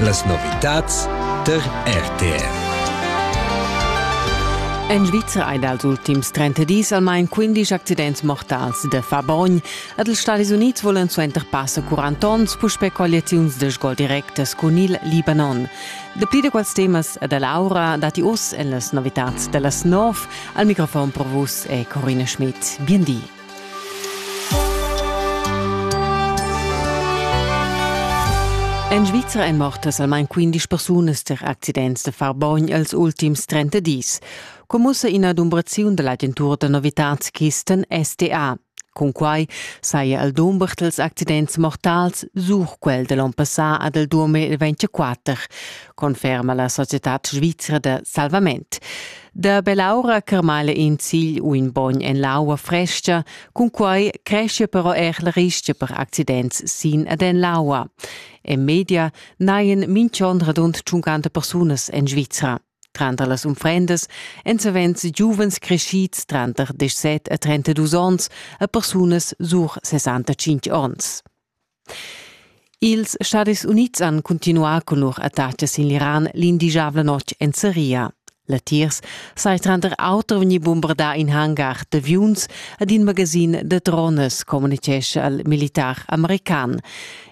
Las novitads tar RTR. En Svizra hai dals ultims 30 dis almain 15 accidents mortals da far bogn. Ed els Stadis Unids volan suenter passa 40 onns puspè colliaziuns da sgol directas cun il Libanon. Dapli da quels temas e da Laura datti uss en las novitads da las 9. Al microfon per vus è Corina Schmidt. Bien di. En Svizra èn mortas almain 15 persunas tar accidents da far bogn els ultims 30 dis, commussa ina dumbraziun da l'agentura da novitads Kisten SDA. Cunquai saja el dumber dals accidents mortals sur quel da l'onn passà ad el 2024, conferma la societad svizra da salvament. Da bell'aura carmala in zigl u in bogn en l'aua fresca, cun quai cresce però er la rischia per accidents sin ed en l'aua. En media naien minch'on radund 50 persunas en Svizra. Tranter las unfrendas èn savens giuvens crescids tranter 17 e 32 onns e persunas sur 65 onns. Ils Stadis Unids han cuntinuà cun lur attacas sin l'Iran l'indigiabla notg en Seria. Latiers sai tranter auter vegnì bombardà in hangar d'aviuns ed in magasin da drones, communitgescha il militar american.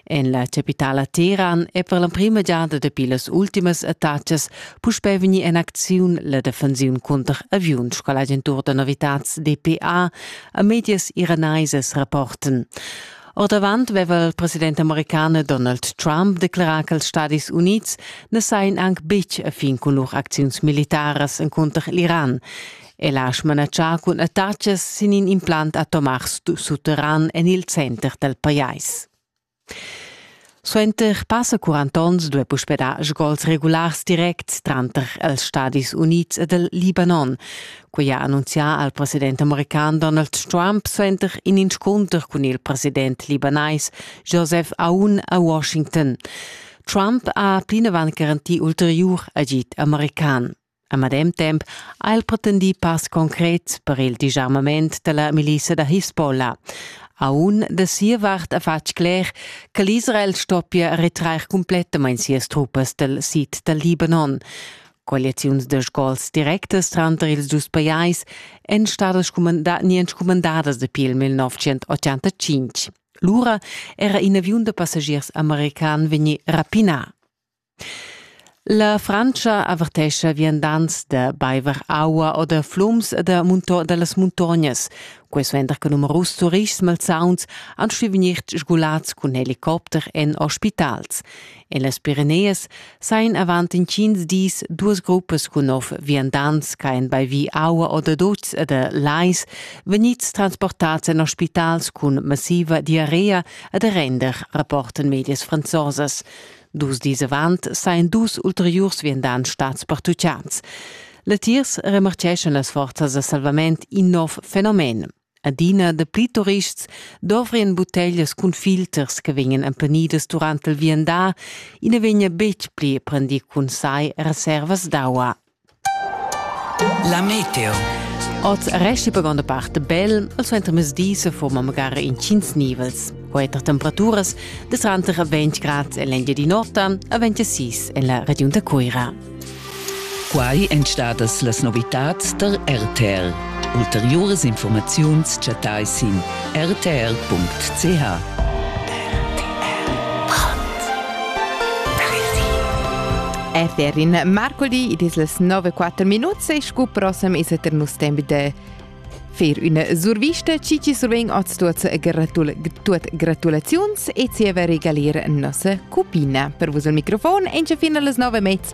En la chapitala Teheran è per l'emprima giada dapi las ultimas attacas puspè vegnì en acziun la defensiun cunter aviuns sco l'agentur da novitads DPA a medias iranaisas rapporten. Ordavant veva il president american Donald Trump declarà ch'ils Stadis Unids na sajan anc betg a fin cun lur acziuns militaras encunter l'Iran. El ha smanatschà cun attacas sin in implant atomars sutterran en il center dal pajais. Suenter passa quarant onns duai puspè dar sgols regulars directs tranter els Stadis Unids ed il Libanon. Quai ha annunzià al president american Donald Trump suenter in inscunter cun il president libanais Joseph Aoun a Washington. Trump ha plinavant garantì ulteriur agid american. A medem temp ha el pretendì pass concret per il disarmament dalla milissa da Hisbollah. Aun da sia vart ha fatg cler che l'Israel stoppia retrair cumplettamain sias truppas dal sid dal Libanon. Coaliziuns de scols directas tranter ils dus pajais èn stadas scumandà, nientsch cumandadas dapi il 1985. Lura era in aviun da passagiers american vegnì rapinà. La Frantscha avertescha viandants da baiver aua o da flums e da munto da las muntognas. Quai suenter che numerus turists malsauns han stuì vegnir sgulads cun helicopter en ospitals. En las Pireneas sajan avant intgins dis duas gruppas cun nov viandants che han baivi aua o da dutgs e da lais vegnids transportads en ospitals cun massiva diarrea e da render, rapportan medias franzosas. Dus dis avant sajan dus ulteriurs viandants stads pertutgads. Latiers remarcheschan las forzas da salvament in nov fenomen. Adina de pli turists dovrien butteglias cun filters che vegnan empenidas durante il viandar, ina vegna betg pli prendì cun sai reservas d'aua. La meteo. Oz resti per gronda parte bel, al suenter mesdi se forma magari in cins nivels. Quater temperaturas de tranter 20 grad en l'Endia di notte a 26 en la region da Cuira. Quai èn stadas las novitads der RTL. Ulteriuras infurmaziuns chattais sin rtr.ch. Äter in marcoli id es las 9 4 minuts e scu prossem es eter nus temp da fer üna survista chi chi survegn oz tuot, gratul, tuot gratulaziuns e zieva regalir nossa cupina. Per vus al microfon encha fin a las 9 mez